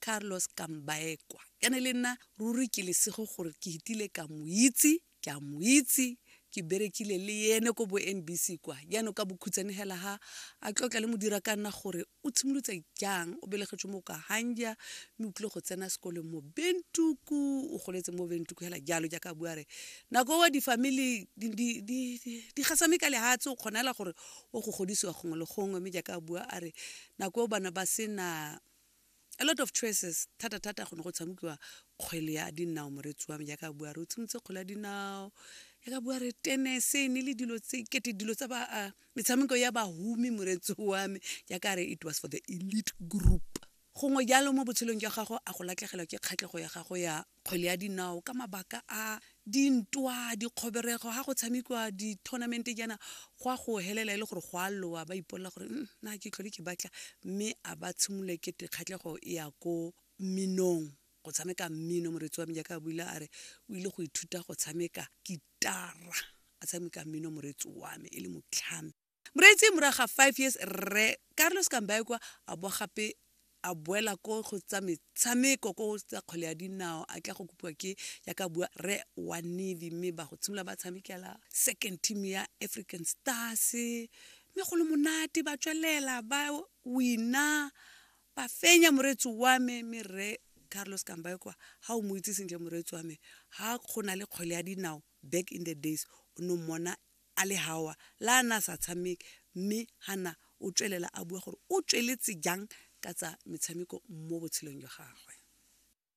Carlos Kambaekwa. Ka ne le nna ruri ke lesego gore ke hitile ka mo itse, ke a mo itse, ke berekile le yene ko bo NBC kwa jaanong ka bokhutshwane hela ha a tlotla le modira ka nna gore o tshimolotse jang o belegetswe mo ka hanja mme o tlile go tsena sekolong mo bentuku o goletse mo bentuku hela jalo jaaka bua re nako wa di-family di gasame ka lehatshe o kgona hela gore o go godisiwa gongwe le gongwe mme jaaka bua a re nako bana ba sena A lot of choices, thata thata go ne go tshamokiwa kgwele ya dinao moretsi wa me jaaka bua re o tshimotse kgwele ya dinao jaaka bua re tenese ne le dilo tse kete dilo tsa ba uh, metshameko ya bahumi moretsi wa me jaaka re it was for the elite group gongwe jalo mo botshelong jwa gago a go latlhegelwa ke kgatlhego ya gago ya kgwele ya dinao ka mabaka a dintwa dikgoberego ga go tshamekiwa di-tournamente jaana go a go helela e le gore go a lowa ba ipolela gore mm, na ke tlhole ke batla mme a ba tshimolole kete kgatlhego e ya ko minong go tshameka mmino moretsi wa me jaaka a buile a re o ile go ithuta go tshameka kitara a tshameka mmino moretsi wa me e le motlhami Moreetsi, Morago ga five years Rre Carlos Kambaekwa a boa gape a boela ko go tsa metshameko ko tsa kgwele ya dinao a tla go kopiwa ke yaka bua re wa navy mme ba go tshimolola ba tshamekela second team ya african stars mme go le monate ba tswelela ba wina ba fenya moreetsi wa me mme re carlos kambaekwa ga o mo itse sentle moreetsi wa me ga go na le kgwele ya dinao back in the days o ne mmona a le haoa le ha a ne a sa tshameke mme Hannah o tswelela a bua gore o tsweletse jang ka tsa metshameko mo botshelong jwa gagwe.